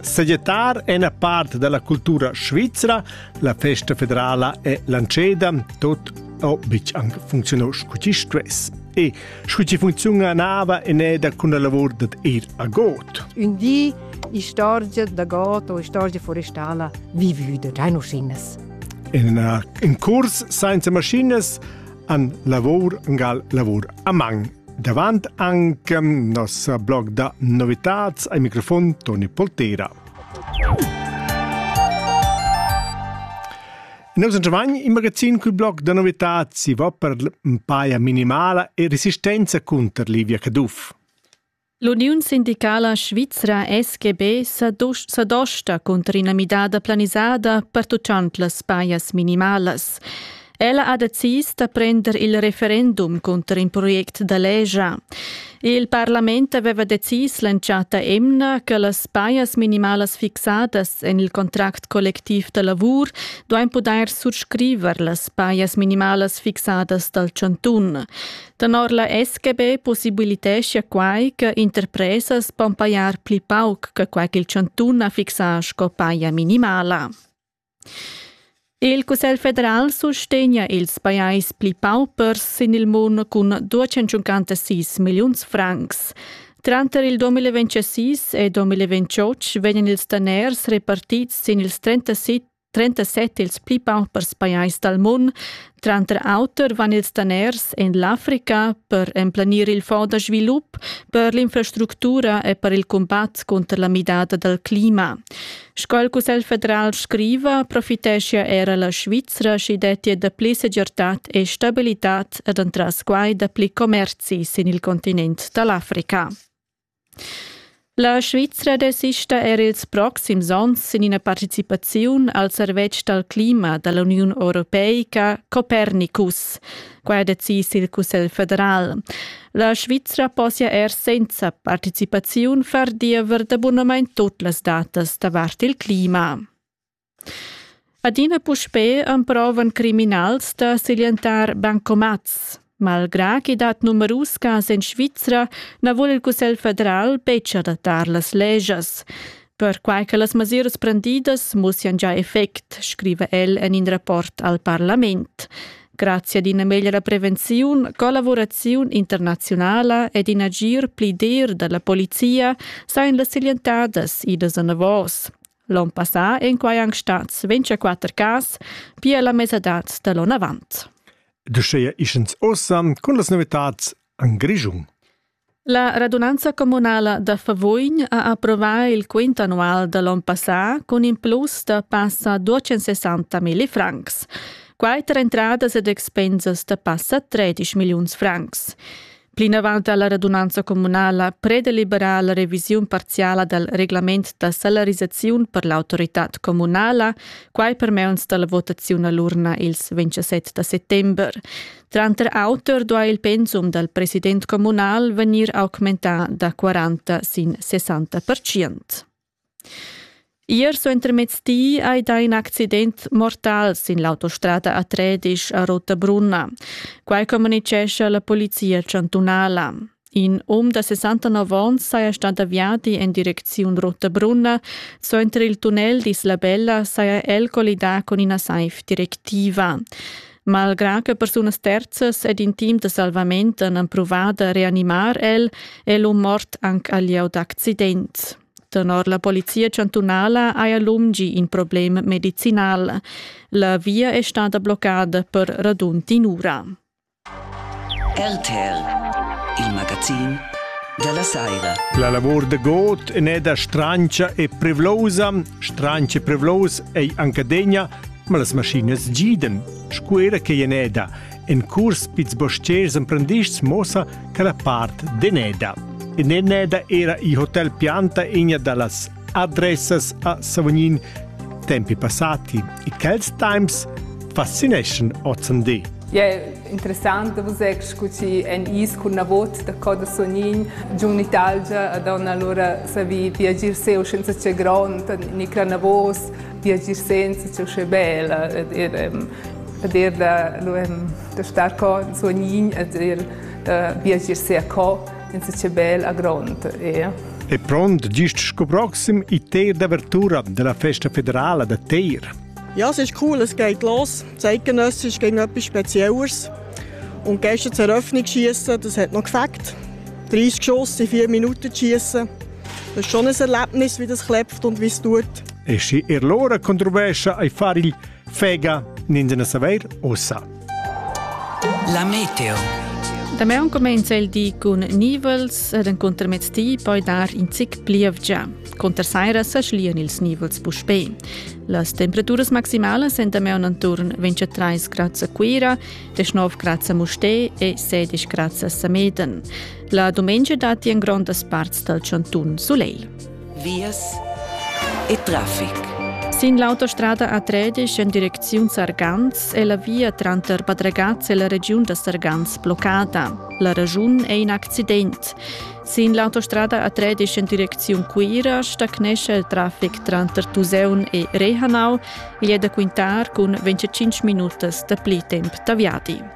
Seglietar è una parte della cultura svizra, la festa federala è lanceda, tot o bic anche funzionò scucci stress. E scucci funzionava in eda con la lavor dat ir a got. Un di istorgia da got o istorgia forestala vivuda, già maschinas. In, in curs senza maschinas an lavor, angal lavor a man. Davant anche nossa blog da novitats ai microfon Toni Poltera. Noi sun giovani in magazin cul blog da novitats si va per paia minimala e resistenza contro Livia Caduff. L'uniun sindicala svizra SGB sa, dos sa dosta cunter ina midada planisada pertuccant las pajas minimalas. Ella ha decis da prender il referendum cunter in project da legia. Il parlament aveva decis l'entschatta emna che las pajas minimalas fixadas en il contract collectiv da lavur duain pudair surscriver las pajas minimalas fixadas dal chantun. Tenor la SGB possibilitescha quai che interpresas pon pajar pli pauc che quai ch'il chantun ha fixà sco paja minimala. Il Cussegl federal sustegna ils pajais pli paupers sin il mund cun 256 milliuns francs. Tranter il 2026 e 2028 vegnan ils daners repartids sin ils 37 37 ils pli paupers pajais dal mund. Tranter auter van ils daners en l'Africa per emplanir il fonds da svilup, per l'infrastructura e per il cumbat cunter la midada dal clima. Sco il Cussegl federal scriva, profiteschia era la Svizra, sch'i dettia dapli segirtad e stabilitad ed entras quai dapli commerzi sin il continent da l'Africa. La Svizra desista er ils proxims onns sin ina participaziun al servetsch dal clima da l'Uniun europeica Copernicus. Quai ha decis il Cussegl federal. La Svizra possia er senza participaziun far diever d'abunamain tut las datas davart il clima. Adina puspè emprovan criminals da siglientar bancomats. Malgrà ch'i dat numerus cas en Svizra, na vul il Cussegl federal betg adattar las legias. Perquai che las mesiras prendidas mussian già effect, scriva el en in rapport al parlament. Grazie ad ina meglra prevenziun, collaboraziun internaziunala ed in agir pli dir dalla polizia sajan las siglientadas idas anavos. L'on passà ein quai anc stats 24 cas, pia la mesadad da l'on avant. De scheia ischens osam cun las novitats an Grischung. La radunanza comunala da Favoin ha approvà il quint annual da l'on passà cun in plus da passa 260 mila francs. Quai tra entradas ed expensas da passa 13 milliuns francs. Plinavant ha la radunanza communala predeliberà la revisiun parziala dal reglament da salarisaziun per l'autoritad communala, quai per meuns da la votaziun a l'urna ils 27 da settember. Tranter auter duai il pensum dal president communal vegnir augmentà da 40 sin 60 percent. Ier suentermezdi ei da in accident mortal sin l'autostrada a Tredisch a Rotabrunna. Quai communicescha la polizia chantunala. In um da 69 onns saja stà aviadi en direcziun Rotabrunna. Suenter il tunnel d'Islabella saja el collidà cun ina saiv directiva. Malgrà che persunas terzas ed in team da salvament han empruvà da reanimar el, è l'um mort anc al lieu d'accident. Tenor la polizia chantunala haja l'um gì in problem medicinal. La via è stada bloccada per radund in'ura. RTL, il magazin della Saira. La lavor de God en è da strancia e prevlosa, strancia e prevlos ei anca degna Ma las maschinas gidan, sco era che eneda. En curs pizs bostgers emprendists mossa che la part deneda. En eneda era il hotel Pianta egna da las adressas a Savognin tempi passati e quels times fascineschan OCND. Je interessant da vus scu chi en is cun na vot da coda sonin giun Italgia ad on allora savi viagir seu senza che grond ni cranavos Tia esistenza è uschè bella ed ir, ed ir da, lu, da star co suognin ed ir da viagier sia co insatge bel a grond. E, e pront gist sco proxim i teir d'avertura della festa federala da Teir. Ja, es ist cool, es geht los. Zeitgenössisch ging etwas Spezielles. Und gestern zur Eröffnung schießen, das hat noch gefällt. 30 Schuss in 4 Minuten zu schießen. E schon ein Erlebnis, wie das klebt und wie es tut. E schi er l'ora controversa ai far il Fega ninzena saver ossa. La meteo. Damian comenza il di cun nivels ed enconter mez ti poi dar in zic plievgia. Conter saira sa schlian ils nivels puspè. Las temperaturas maximalas en Damian attorn 23 grad a Cuira, 19 grad a Mustè e 16 grad a Sameden. La dumengia datti en grondas parts dal chantun sulegl. Vias e traffic. Sin l'autostrada A13 en direcziun Sargans è la via tranter Bad Ragaz e la regiun da Sargans bloccada. La raschun è in accident. Sin l'autostrada A13 en direcziun Cuira stagnescha il traffic tranter Tuseun e Rehanau. Igl è da quintar cun 25 minutas dapli temp da viadi.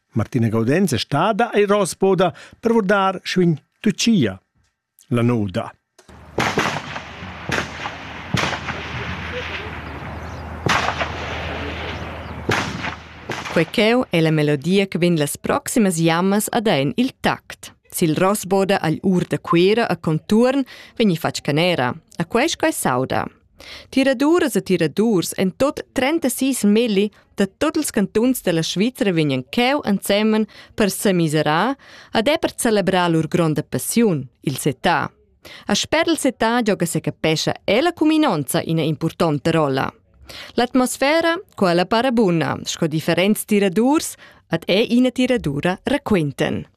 Martina Gaudenz è stada a Rosboda per vurdar schwin Tucia, la noda. Quei cheu è la melodia che vegn las proximas jammas ad en il tact. Sil Rosboda agl ur da Cuera a conturn vegni fatg canera. A quei sco sauda. Tiraduras e tiradurs en tut 36 milli da tut ils cantuns della Svizra vegnan cheu ensemen per semiserar ed è per celebrar lur gronda passiun, il setà. A sper il setà gioga secapescha ella cuminonza ina impurtonta rolla. L'atmosfera, quella para buna, sco differents tiradurs, ed è ina tiradura raquinten.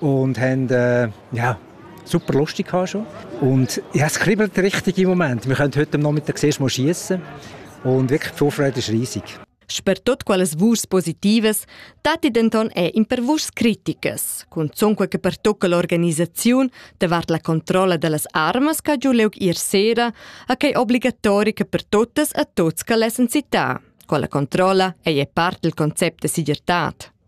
und haben äh, ja, super lustig gehabt schon. Und ja, es kribbelt richtig im Moment. Wir können heute Nachmittag zuerst mal schießen und wirklich die Vorfreude ist riesig. Per tot quales vuschs positivas datti denton è in per vuschs criticas, cunzunque che pertocca l'organisaziun davart la controlla dellas armas che giu leug ir sera, a che obligatorica per totas a tots che lessen città. Con la controlla ei è parte del concept de sigirtad.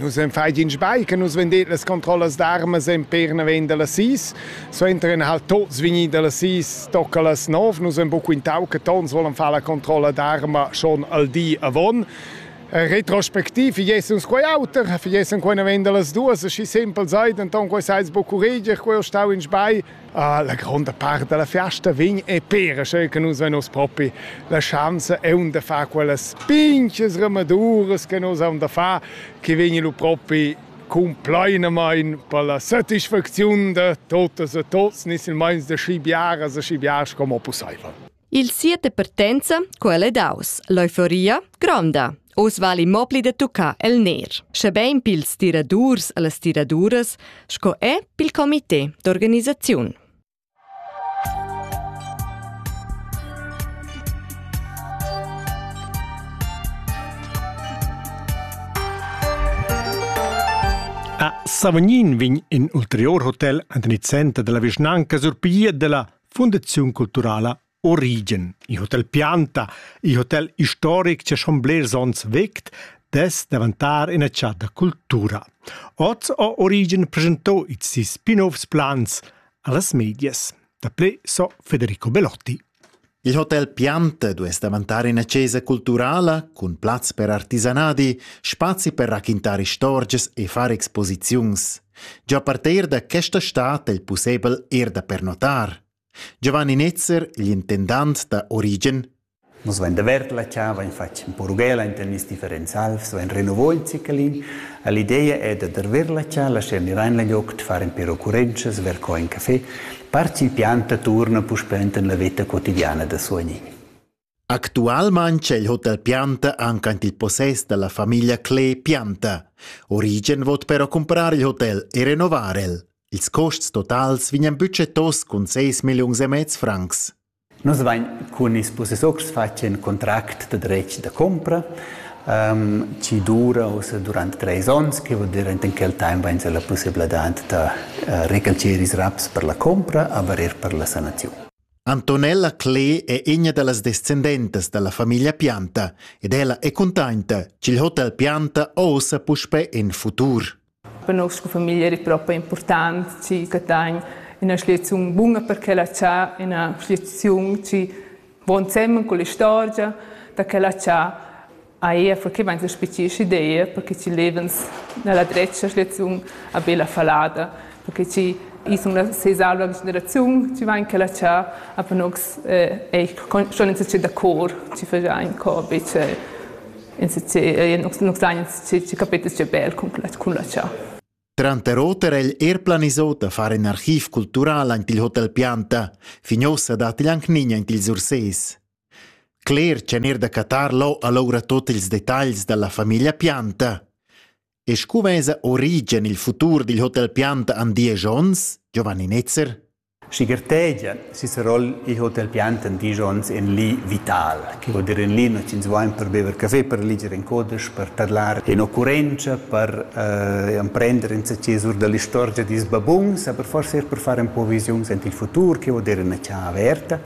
Nus en fai in sbagl che nus vendet las controllas d'armas en per naven da las sis. Suenter en halt tots vigni da las sis tocca las nov. Nus en bu quintau che tons volen far la controlla d'arma schon al di avon. Retrospectiv, fiessens quei auter, fiessens quei naven da las duas, schi sempel seid, enton quei seis bu curreger, quei ho stau in sbagl, Ah, la gronda part dalla fiasta vegn e pera sche che nus vein oz propi la schanza e un da far quellas pinches remaduras che nus haun da far, che vegni lu propi compleinamein per la satisfacziun da totas e tots, ni silmeins da schi biaras e schi biars como pusseivel. Il sia departenza, quella è daus. L'euforia gronda. Oz vali mo pli da tuccar el ner. Schebein pils tiradurs e las tiraduras, sco è pil comité d'organisaziun. A Savognin vegn in ulterior hotel an den center della vischnanca surpiglia della Fundaziun culturala Origen. Il hotel Pianta, il hotel historic che schon blers onns vegt, des davantar in chat da cultura. Oz ha Origen presentò i si spin-offs plans allas medias. Da ple so Federico Belotti. Il hotel Piante dues davantar ina chesa culturala cun plaz per artisanadi, spazi per raquintar istorgias e far exposiziuns. Gia parter da questa stad è il pussebel er da pernotar. Giovanni Netzer, l'intendant da Origen. Nus vain davert la cha, vain fatg ün po rughela inter nis differents alvs, vain renovò il ciclin. L'ideia è da darver la cha, lascher nivain la ioc, far ün pêr occurrenzas, ver co in café. Par chi pianta turna puspè enten la veta quotidiana da suagnin. Actualmain c'è il hotel Pianta anche in il possess della famiglia Klee Pianta. Origen vot però comprar il hotel e renovar el. Ils costs totals vignan budgetos cun 6 milliuns e mezz francs. Nus vain cun ils possessors fatg in contract de dretg de compra um, ci dura ussa durante treis ons, che vuol dire in quel time vain la possibilità de uh, recalcire i raps per la compra, aber er per la sanazione. Antonella Clee è ina da las descendentas da la famiglia Pianta ed ella è cuntenta ch'il hotel Pianta ossa puspè en futur. Per noi sco famiglia è proprio important che Catagn ina schliaziun bunga per quella c'ha, ina schliaziun che va insieme con l'istorgia da quella c'ha Ei ha forclamein sespici sch'idea perche chi levens nella dretga schliaziun a bella fallada, perche chi i sun la sesalva generaziun chi vain quella cha a panox ei schon in società da cor chi faja in cor bice in società chi capetas che bel cun la cha. Tranter oter egl er planisò da far in archiv cultural aint il Hotel Pianta. Fin ossa dat il anc nign aint il Surses. Cler tschenir da cattar lò alura tut ils detagls dalla famiglia Pianta. E scu vesa Origen il futur dil hotel Pianta an diesch onns, Giovanni Netzer? Schiger tegia sis roll il hotel Pianta en dies onns en li vital, che vuol dire en li noi ins vain per bever café, per liger in codes, per tadlar in occurrenza, per eh, emprender insacché sur dall'istorgia dis babuns, aber forse er per fare un po' visiuns ant il futur, che vuol dire una cià averta.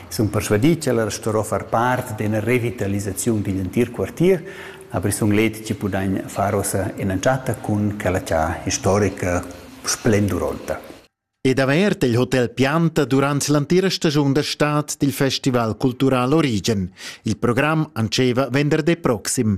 sun persvadì ch'ella starò far part d'üna revitalisaziun digl entir quartier, aber es sun let chi pudagn far uossa ün'entschatta cun quella cha istorica splenduronta. Ed avert il Hotel Pianta durant l'entira stagiun da stad dil Festival cultural Origen. Il program antscheva venderdi proxim.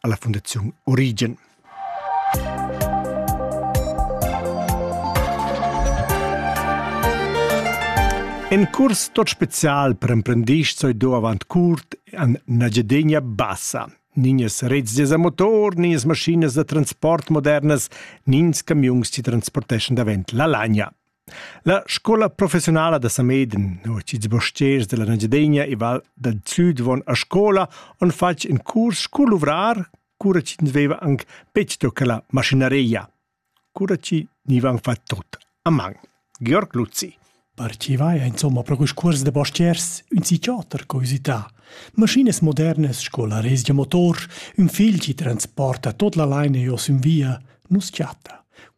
alla Fundaziun Origen. En curs tot special per emprendisch soi do avant curt an Nagyadegna Bassa. Ninjas rezzes a motor, ninjas maschinas da transport modernas, nins camiuns ti transporteschan davent la lagna. La scola professiunala da Sameden, uoch ils bostgers della Engiadegna e val dal sud von a scola han fatg in curs cu luvrar, cura chi ins veva anc betg tocca la maschinaria. Cura chi nivan fat tot a man. Georg Luzzi. Parcivai insomma pro quist cuors de bostiers ün psichiater co usità. Maschinas modernas sco la resgia motor, ün fil chi transporta tot la laina jos in via, nus chatta.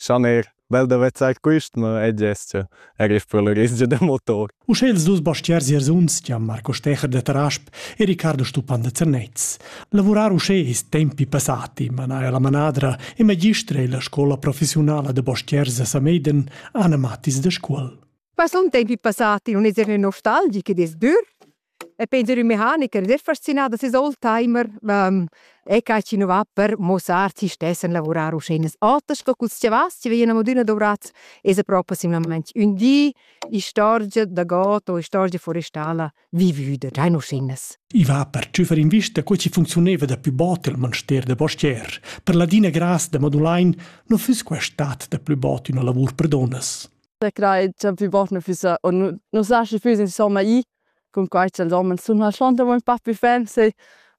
Schaner, bel da vezzar quist, ma e gest er ich per la rizgia da motor. Uschè ils dus bastiers Jersuns, Gian Marco Stecher de Tarasp e Riccardo Stupan de Zernez. Lavurar uschè ist tempi passati, manaja la manadra e magistra e la scola professionala de bastiers a Sameiden, Anna Mattis de Scuol. Ma sun tempi passati, un eser nostalgic ed es dür? E Peter, ün mecanicher, der fascinà da seis old timer. E ca chi nu va per muossar chi stess a lavurar uschè. Oter sco culs chiavas chi vegnan adüna dovrats, esa propi simlamaing ün di istorgia da god o istorgia forestala vivüda, già in uschinas. I va per tschüfar invista co chi funcziunaiva da pü bod il manster da postier. Per ladina gras da Modulain nu füss quai stat da plü bod üna lavur per donnas. Sä crai cha plü bot nu füssa o nu nu saschi füss insomma i cun quai cha'ls homens sun schlonter ün pa pi ferm se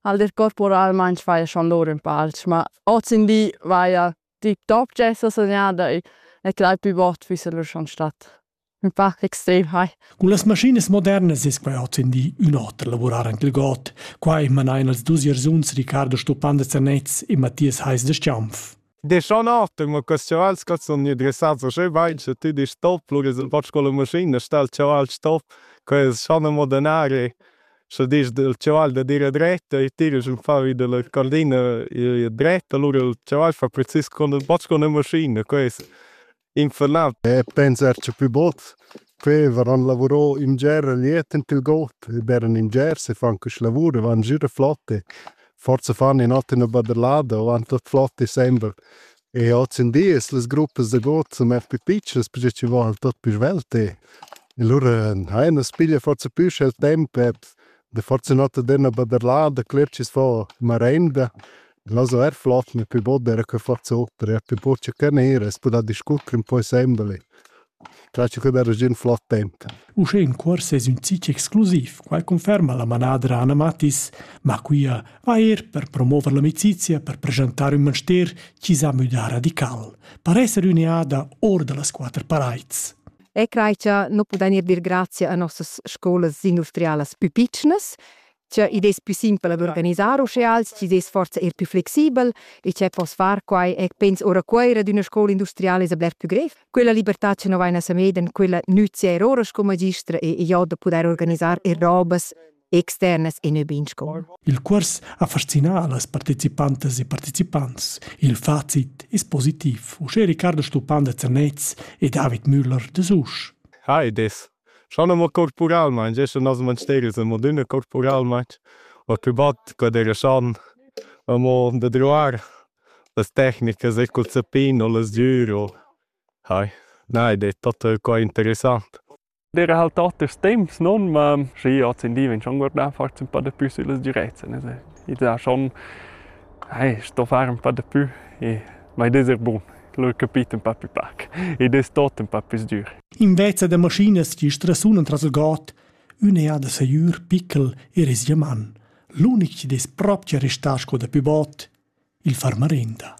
al der corporalmaing faja schon lur ün pa alch, ma hoz in li vaja tip top d'esser segnada e crai plü bot füssa lur schon stat ün pa extrem hai. Cun las maschinas modernas es quai hoz in di ün oter lavurar anche il god. Quai manain els dus gersuns Riccardo Stupan da Zernez e Mathias Heis da Stiaunf. Deschan artem a quest chaval sco sun gnü dressats uschè bain cha tü disch stop, lura es ün poch sco la maschina, sta il chaval stop, quai es schon amo denari, scha disch il chaval da dir dret e tira sün fa vi da la cordina dret, alura il chaval fa precis cun ün poch cun la maschina, quai es infernal. E pensar c'è più bot. Quei varan lavurò in ger liet in til got, e beran in ger se fan quest lavur, van gira flotte. Forza fan in ot in baderlada, van tot flotte sembra. E oz in dies las gruppas da got sun mer più piccias, perché ci val tot più svelte. E lura hai una spiglia forza più il tempo, e da forza nota d'una baderlada, cler ci fa marenda. Glaso er flot ne pü bod era que fat soper, er pü bod cha canera es pudà discurrer ün po insembel e classico da regiun flot temp. Uschè in cuors es ün zich exclusiv, quai conferma la manadra Anna Mattis, ma quia va eir per promover l'amicizia per preschantar ün manster chi s'ha müdà radical, per esser üneada or da las quatter paraids. E crai cha nu pudain eir dir grazia a nossas scolas industrialas pü pitschnas, Tgeu id es plü simpel ad organisar uschè als chi's es forsa eir plü flexibel e tgeu poss far quai e pens ora Cuoira d'üna scoula industriala es a bler plü grev. Quella libertà cha no vain a Samedan, quella nüzia er ora sco magister e e jo da pudair organisar er robas externas e nö be in scoula. Il cuors ha fascinà las partecipantas e partecipants. Il facit es positiv, uschè Riccardo Stupan da Zernez e David Müller da Susch. Hi, id es Schon amo corporalmaing, esser nos manstergls amo adüna corporalmaing, o il plü bot que d'eira schon amo da druar las tecnicas eir cul zappin o las dür o hai. Na, id es tot qua interessant. D'eira halt oters temps, non? Ma schi, hoz in di vegn schon guardà forsa ün pa da pü süllas direzzen, es id ha schon hai sto far ün pa da pü e ma id es eir bun. Lur capit ün pa pü pac. Id es tot ün pa pü sdür. Inveza da maschinas chi strasunan tras il god, ün eau da sajür pickel e rezia man. L'unic chi'd es propcha restà sco da pü bod, il far marinda.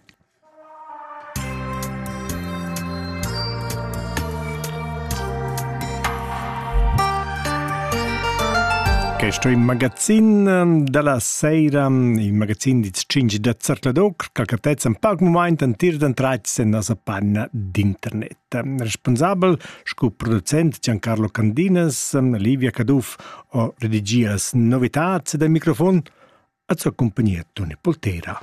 Questo è il magazzin ehm, della sera, il magazzin di 5 da Zertladocr, che cartezza un poco moment, un tir d'entrate se nostra panna d'internet. responsabel sco producent Giancarlo Candinas an Livia Caduff o redigias novitads ed al microfon a sua compagnia Toni Poltera.